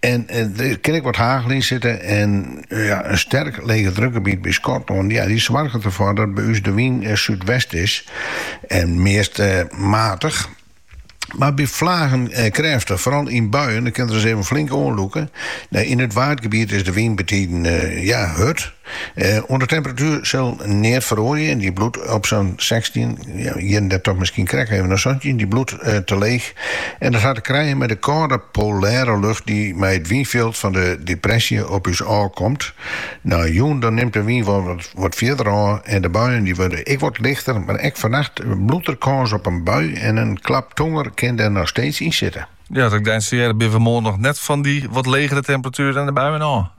En der kin ek wat hagel yn sitte en ja, in sterk legedrukgebiet by Skotlân ja, dy soarget derfoar dat by ús de wyn súdwest is en meast matich. Mar by flagen krêftich, foaral yn buien, dan kin er ris even flink oanlûke. Yn it Waadgebiet is de wyn betiden ja, hurd. Oan de temperatuer sil neat feroarje. Dy bliuwt op sa'n sechstjin, hjir en dêr toch miskien krekt even nei santjin. Dy bliuwt te leech en dat hat te krijen mei de kâlde polêre lucht dy't mei it wynfjild fan de depresje op ús ôf komt. No jûn dan nimt de wyn wol wat fierder ôf en de buien dy wurde ek wat lichter, mar ek fannacht bliuwt der kâns op in bui en in klap tonger kin der noch steeds yn sitte. Ja dan binne we moarn noch net fan dy wat legere temperatuer en de buien ôf.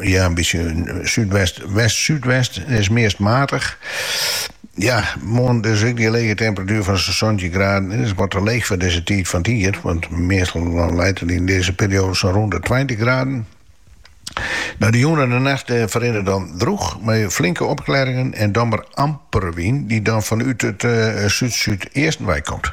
ja, in bytsje súdwest, west-súdwest. En is meast matich. Ja, moarn dus ek dy lege temperatuer fan sa'n santjin graden. En is wat te leech foar deze tiid fan het jier. Want meestal dan leit it yn dizze perioade sa'n rûn de 20 graden. No, de jûn en de nacht eh, verrinnen dan droech, mei flinke opklearingen en dan mar amper wyn, dy't dan fanút it eh, súd-súdeasten komt.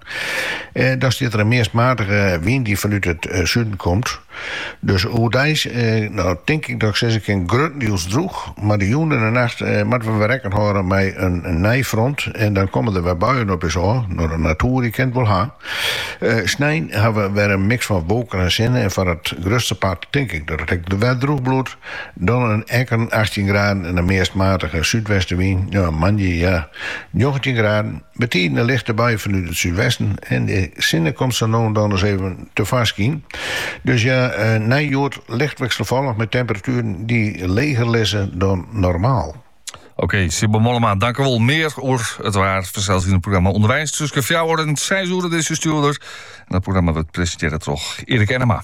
Dan stiet der in meast matige wyn dy't fanút it suden komt. Dus oerdeis, no tink ik dat ik sizze kin, gruttendiels droech. Mar de jûn en de nacht moatte we wer rekken hâlde mei in nij front en dan komme der wer buien op ús ôf. No, de natoer dy kin it wol ha. Snein ha we wer in miks fan wolken en sinne en foar it grutste part tink ik dat it ek wer droech bliuwt. Dan in lytse achttjin graden en in meast matige súdwestewyn. Moandei, ja, njoggentjin graden. Betiden in lichte bui fanút it súdwesten en de sinne komt sa no en dan ris even tefoarskyn. Dus ja nei hjoed licht wikselfallich mei temperatueren dy't leger lizze dan normaal. Oké, Sybil Mollema, dankjewol. Mear oer it waar fansels yn it programma Underweis tussen fjouwer en seis oere op dizze stjoerder. En dat programma wurdt presentearre troch Erik Ennema.